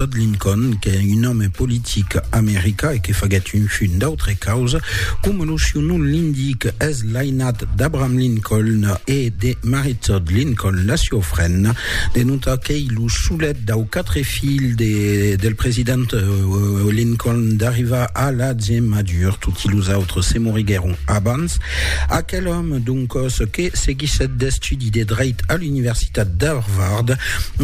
Todd Lincoln, qu'es un òme politic america e que faguèt un fum d'autre causa, coma lo siu nom l'indique, es l'ainat d'Abraham Lincoln e de Mary Todd Lincoln, la siua frenda. De notar qu'ei lo solet dau quatre filhs de, del president Lincoln d'arrivar a l'atge madur, toti los autres se moriguèron abans. Aquel òme, doncòs, que seguissèt d'estudi de dreit a l'Universitat d'Harvard,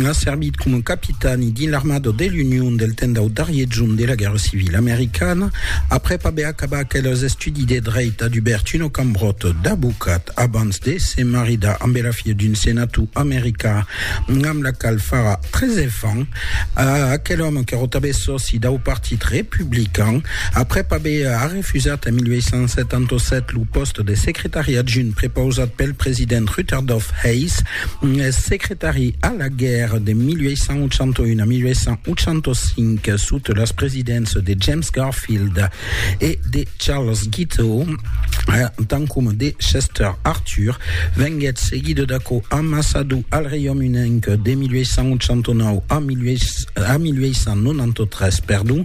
A servit coma capitani dins l'armada de l'Union del temps dau darrier jorn de la Guèrra Civila Americana. Aprèp aver acabat aqueles estudis de dreit, a dubèrt una cambròta d'abocat abans de se maridar ambe la filha d'un senator americà amb la qual farà tres enfants. Aquel òme qu'èra tanben sòci dau partit republican, aprèp aver arrefusat en 1877 lo pòste de secretari adjunt prepausat pel president Rutherdof Hayes, secretari a la guèrra de 1881 a 1885 sota las presidéncias de James Garfield e de Charles Guiteau, tant coma de Chester Arthur, venguèt seguida d'aquò ambaçador al Reiaume Unenc de 1889 a 1893, perdon,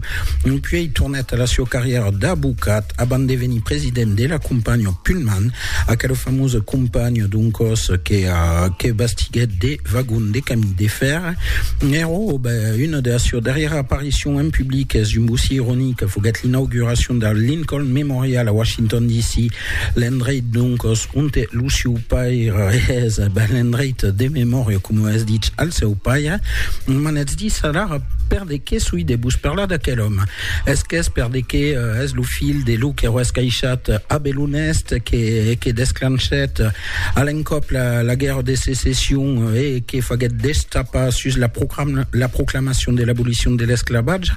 puèi tornèt a la siua carrièra d'abocat abans de venir president de la companhiá Pullman Aquel famós companh d'un còs que bastiguèt de vagons de camin de fèr, Nero, una de las sieus darrièras aparicions en public es un bocí ironic, foguèt l'inauguracion del Lincoln Memorial a Washington DC, l'endreit doncas onte lo sieu paire es, l'endreit de memòria coma es dich al seu paire, m'anètz dich alara per de qué soi de vos parlar d'aquel òme. Es qu'es per de qué es lo filh de lo que roes caishat a Belonest que que desclanchèt a l'encòp la la guèrra de secession e que faguèt destapa sus la proclama la proclamacion de l'abolicion de l'esclavatge?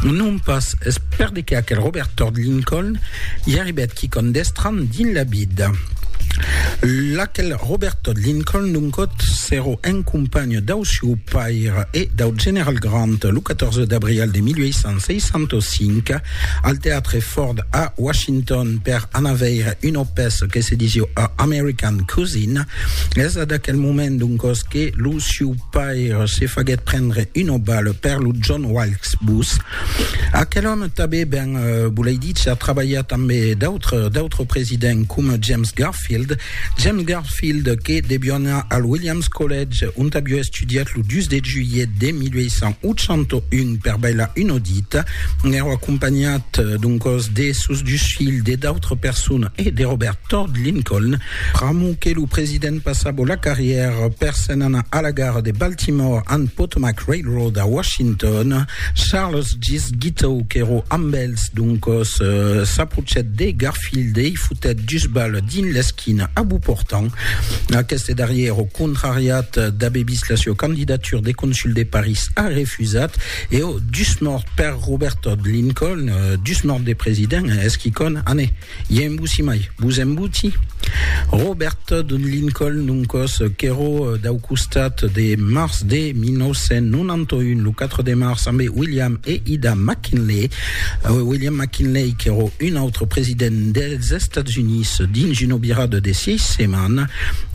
Non pas, es per de qué aquel Robert Todd Lincoln i arribèt quicòm d'estranh dins la vida. L'aquel Robert Todd Lincoln d'un còt s'èro un companh dau sieu pair, Shakespeare e dau general Grant lo 14 d'abrial de 1865 al teatre Ford a Washington per anar veire una pèça que se disiu A American Cuisine. Es a d'aquel moment doncos que lo siu paire se faguèt prendre una bala per lo John Wilkes Booth. Aquel òme tanben ben, volei dícher, trabalhar tanben d'autres d'autres presidents coma James Garfield. James Garfield, que devió anar al Williams College, ont avió estudiat lo 2 de julhet de 1881 per bailar un audit, èra acompanhat d'un còs de sos dus filhs, de d'autres personas e de Robert Todd Lincoln, pr'amor que lo president passava la carrièra per se'n anar a la gara de Baltimore and Potomac Railroad a Washington. Charles Gist Guiteau, qu'èra amb els, d'un còs s'aprochèt de Garfield. Field ei fotèt dus bal dins l'esquina a Beau Portant. Aqueste darrier, au contrariat d'aver vist la sieu candidatura de consul de París, a refusat e au dus mòrt per Robert Todd Lincoln, dus mòrt de president, es quicòm, ane, i en vosi mai, vos en voti? Robert Todd Lincoln, un còs qu'èro dau costat de març de 1991, lo 4 de març, ambe William e Ida McKinley, William McKinley, qu'èro un autre president dels Estats Units, dins una virada de sièis setmanas,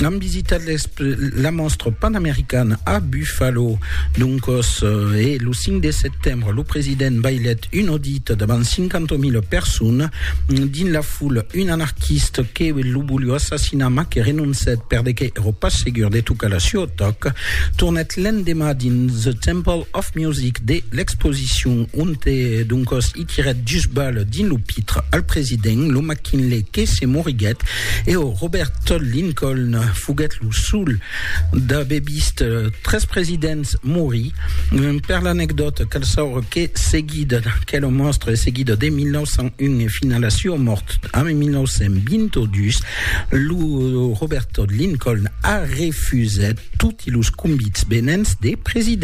an visitat la mòstra panamericana a Buffalo. Doncòs, e lo 5 de setembre, lo president bailèt un audit davant 50.000 personas. Dins la foula, un anarquist que lo volió assassinar mas que renoncèt perdeque èro pas segur de tocar la suò tòca, tornèt l'endemà dins The Temple Of Music de l'exposicion, onte doncòs i tirèt dus balhs dins lo pitre al president, lo McKinley que se moriguèt e o Robert Lincoln foguèt lo sol d'aver vist tres presidents morir. Per l'anecdòta, cal saure que seguida d'aquela mòstra e seguida de 1901 e fins a la sua mòrt en 1922, lo Robert Lincoln a refusèt toti los convits venents de presidents.